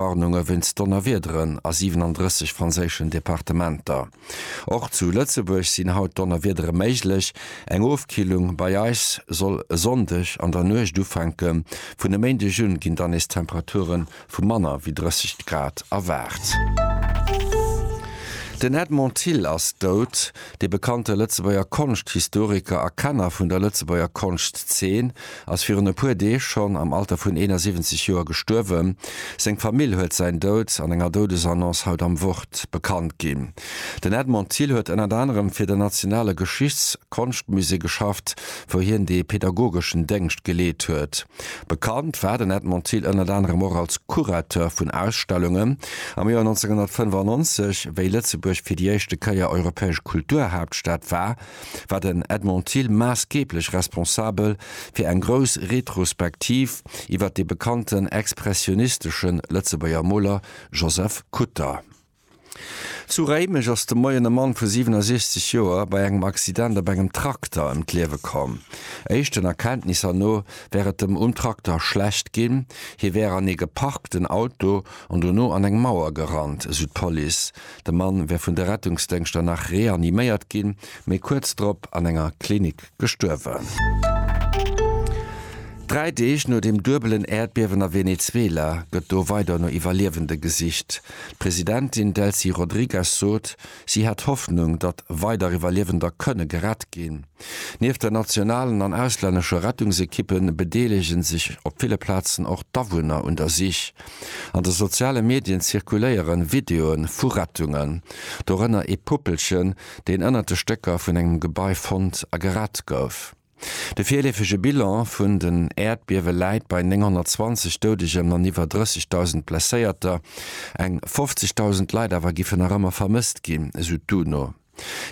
Warnunge wéinst Donnerwiederen a 37 franséischen Departementer. Och zu Lëtzebuerg sinn haut Donnerwiedere méiglech. Eng Ofkillung bei eis soll e Sonndeg an der Nuecht ufänken. Vun e Méindeg un ginn dann nees Temperature vu manner wéi 30 Grad erwaart. Den Edmond Thill ass dout. De bekannte Lëtzebuerger Konschthistoriker a Kenner vun der Lëtzebuerger Konschtzeen ass virun e puer Deeg schonn am Alter vun 71 Joer gestuerwen. Seng Famill huet säin Doud an enger Doudesannonce haut am Wort bekannt ginn. Den Edmond Thill huet ënnert anerem fir den Nationale Geschichts Konschtmusée geschafft, wou hien de pedagogeschen Déngscht geleet huet. Bekannt war den Edmond Thill ënnert anerem och als Curateur vun Ausstellungen. Am Joer 1995, wéi Lëtzebuerg fir déi éischte Kéier europäesch Kulturhaaptstad war, war den Edmond Thill maassgeeblech responsabel fir eng grouss Retrospektiv iwwer de bekannten expressionisteschen Lëtzebuerger Moler Joseph Kutter. Zu Réimech ass de Moien e Mann vu 67 Joer bei engem Accident op engem Trakter ëm d'Liewe komm. Éischten Erkenntnisser no wär et dem um Trakter schlecht ginn, hie wär an ee geparkten Auto an dono an eng Mauer gerannt, esou d'Police. De Mann wär vun de Rettungsdéngschter nach reaniméiert ginn, mee kuerz drop an enger Klinik gestuerwen. Dräi Deeg no dem duebelen Äerdbiewen a Venezuela gëtt do weider no Iwwerliewende gesicht. D'Presidentin Delcy Rodrigues sot, si hätt Hoffnung, datt weider Iwwerliewender kënne gerett ginn. Nieft der nationalen an auslännescher Rettungsekippe bedeelege sech op ville Plazen och d'Awunner un der Sich. An de soziale Medien zirkuléiere Videoe vu Rettungen, dorënner ee Puppelchen, deen ënnert de Stécker vun engem Gebai fonnt a gerett gouf. De virleefege Bilan vun den Äerdbiewe läit bei 920 Doudegen an iwwer 30.000 Blesséierter, eng 50.000 Leit awer giffen nach ëmmer vermësst ginn, esou d'UNO.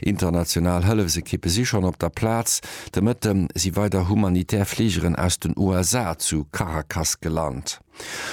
International Hëllefsekippe si schonn op der Plaz. De Mëtte si weider humanitär Fligeren aus den USA zu Caracas gelant.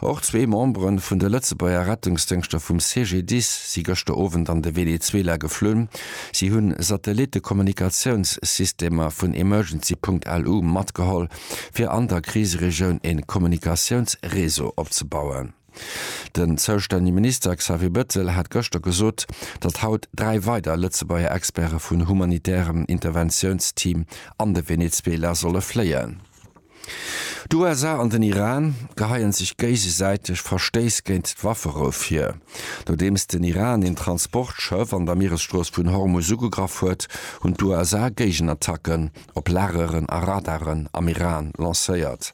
Och zwee Membere vun de Lëtzebuerger Rettungsdéngschter vum CGDIS si gëschter Owend an de Venezuela geflunn. Si hu Satellitte-Kommunikatiounssystemer vun Emergency Punkt LU matgeholl, fir an der Kriseregioun ee Kommunikatiounsreseau opzebauen. Den zoustännege Minister Xavier Bettel hat gëschter gesot, datt haut dräi weider Lëtzebuerger Experte vun humanitärem Interventiounsteam an de Venezuela solle fléien. D'USA an den Iran geheien sech géigesäiteg Verstéiss géint d'Wafferou vir, nodeems den Iran een Transportschëff an der Mieresstrooss vun Hormuz ugegraff huet, hunn d'USA Géigenattacken op Lageren a Radaren am Iran lancéiert.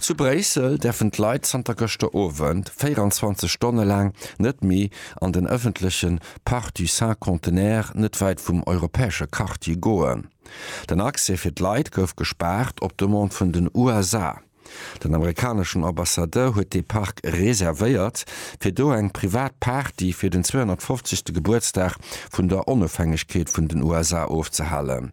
Zu Bréissel däerfen d'Leit zanter gëschter Owend 24 Stonne laang net méi an den ëffentleche Parc du Cinquantenaire net wäit vum europäesche Quartier goen. Den Accès fir d'Leit gouf gespaart op Demande vun den USA. Den amerikaneschen Ambassadeur huet dee Park reservéiert, fir do eng privat Party fir den 250. Gebuertsdag vun der Onofhängegkeet vun den USA ofzehalen.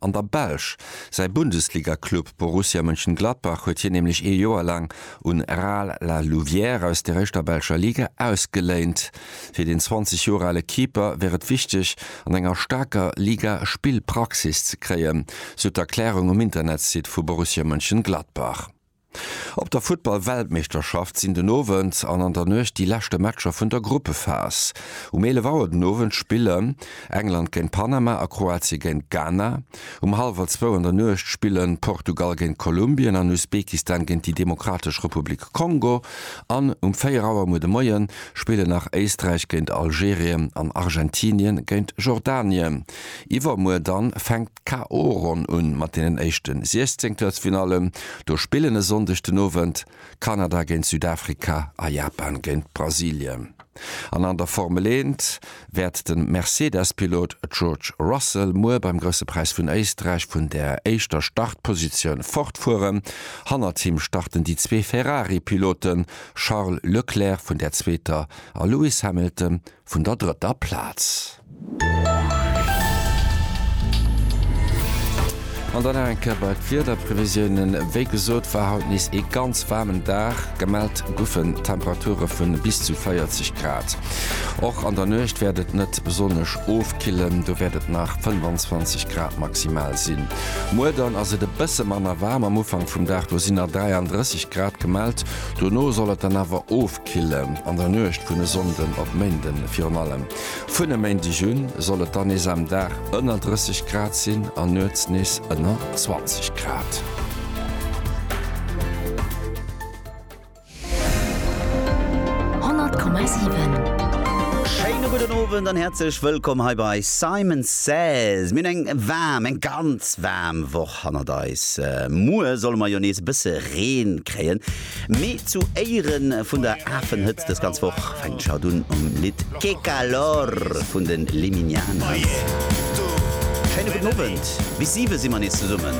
An der Belsch. Säi Bundesliga-Club Borussia Mönchengladbach huet hien nämlech ee Joer laang un Ral La Louvière aus der éischter belscher Liga ausgeléint. Fir den 20 Joer ale Keeper wär et wichteg, an enger staarker Liga Spillpraxis ze kréien, sou d'Erklärung um Internetsite vu Borussia Mönchengladbach. Op der Futtball-Weltmeeschterschaft sinn den Owend an an der Nuecht déi leschte Matcher vun der Gruppephas. Um 11 Auer den Owend spillen England géint Panama a Kroatie géint Ghana. Um hallwer zwou an der Nuecht spillen Portugal géint Kolumbien an Usbekistan géint déi Demokratesch Republik Kongo. An um 4 Auer muer de Moien spillen nach Éisträich géint Algerien an Argentinien géint Jordanien. Iwwermuer dann fänkt K.O-Ronn un mat deenen éischte 16 Huelfinallen. Do spillen e Sonndeg den Owend Kanada géint Südafrika a Japan géint Brasilien. An an der Formel 1 wäert de Mercedes-Pilot George Russell muer beim Grousse Präis vun Éisträich vun der éischter Startpositioun fortfueren. Hannert him starten déi zwee Ferrari-Piloten, Charles Leclerc vun der zweeter a Lewis Hamilton vun der drëtter Plaz. An dann nach eng Kéier bei d'Wiederprevisiounen. Wéi gesot war haut nees ee ganz waarmen Dag. Gemellt goufen Temperature vu bis zu 40 Grad. Och an der Nuecht wäert et net besonnesch ofkillen, do wäert et nach 25 Grad maximal sinn. Muer dann ass et e bësse manner waarm, am Ufank vum Dag do sinn nach 33 Grad gemellt, dono soll et dann awer ofkillen. D'Kille an der Nuecht vun e Sonnden op Méinden, Virun allem vun e Méindeg un soll et dann nees am Dag ënner 30 Grad sinn an nuets nees ënner 20 Grad. Schéine gudden Owend an häerzlech wëllkomm hei bei Simon Says. Mir hunn eng waarm, eng ganz waarm Woch hannert eis. Muer solle mer jo nees e bësse Reen kréien. Mee zu Éiere vun der Afenhëtzt dës ganz Woch fänkt d'Jade un mam Lidd Que Calor vun den Liminianas. Schéine gudden Owend, bis 7 si mer nees zesummen.